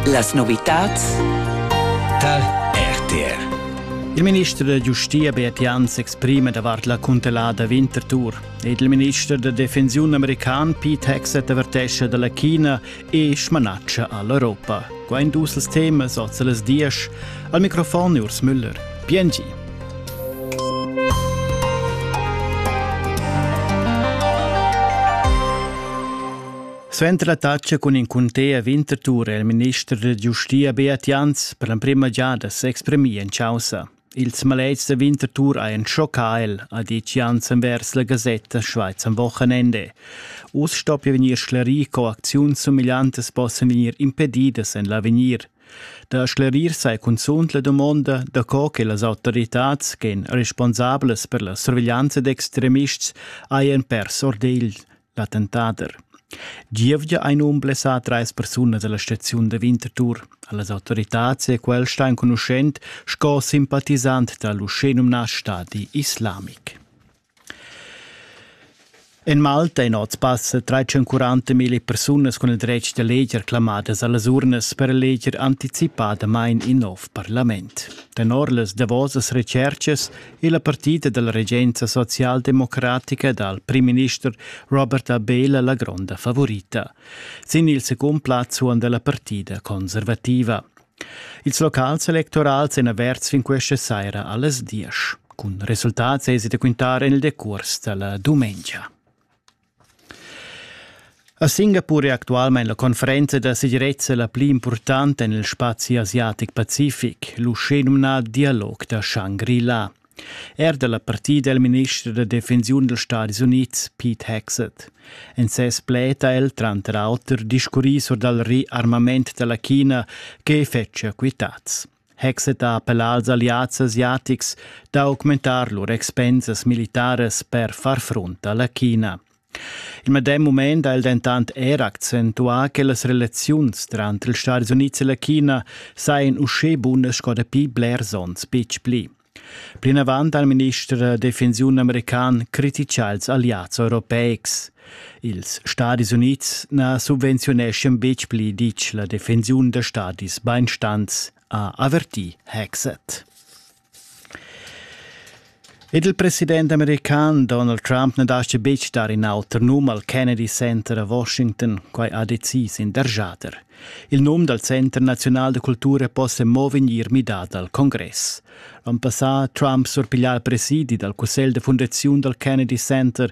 Las novitads tar RTR. Il minister da giustia Beat Jan s'exprima davart la cuntelada Winterthur ed il minister da defensiun american Pete Hegseth avertescha dalla China e smanatscha all'Europa. Qua in dus els temas oz las diesch. Al microfon Urs Müller. PNG. Suenter la tatscha cun in cunter Winterthur è il minister da giustia Beat Jans per l'emprima giada s'exprimì en chaussa. Ils maletgs da Winterthur hajan schoccà el, ha ditg Jans envers la Gazzetta Schweiz am Wochenende. Uss stoppia vegnir sclerì, co acziuns sumigliantas possan vegnir impedidas en l'avegnir. Da sclerir sai cunzunt la dumonda da co che las autoritads ch'èn responsablas per la surveglianza d'extremists hajan pers ordegl. L'attentader. Gievgia ein um blessà treis persunas dalla staziun da Winterthur. Las autoritads e quel sta enconuschent sco simpatisant dall'uschenumna Stadi Islamic. En Malta ein oz passa 340 mila persunas cun il dretg da leger clamadas allas urnas per leger anticipadamain in nov parlament. Tenor las davosas retschercas è la partida dalla regenza socialdemocratica dal primminister Robert Abela la gronda favorita. Sin il secund plaz suon della partida conservativa. Ils locals electorals en averts fin questa saira alles 10. Con resultats esite quintare nel decurs della domenica. A Singapur è actualmain la conferenza da segirezza la pli impurtanta en il spazi asiatic-pacific, l'uschenumnà dialog da Shangri-La. Er da la partida è il minister da defensiun dals Stadis Unids, Pete Hegseth. En ses pled ha el tranter auter discurrì sur dal riarmament da la China che fetschia quitads. Hexet ha appellà als alliads asiatics da augmentar lur expensas militaras per far frunt a la China. Il medem mument ha el dentant er accentuà che las relaziuns tranter ils Stati Unids e la China sajan uschè bunas sco dapi blers onns betg pli. Plinavant ha il minister da defensiun american critisà ils alliads europeics. Ils Stadis Unids na subvenziuneschan betg pli ditg la defensiun da stadis bainstants, ha avertì Hexet. Ed il president american Donald Trump na dastga betg dar in auter num al Kennedy Center a Washington, quai ha decis in dergiader. Il num dal Center naziunal da cultura possa mo vegnir midà dal congress. L'onn passà ha Trump surpiglià il presidi dal cussegl da fundaziun dal Kennedy Center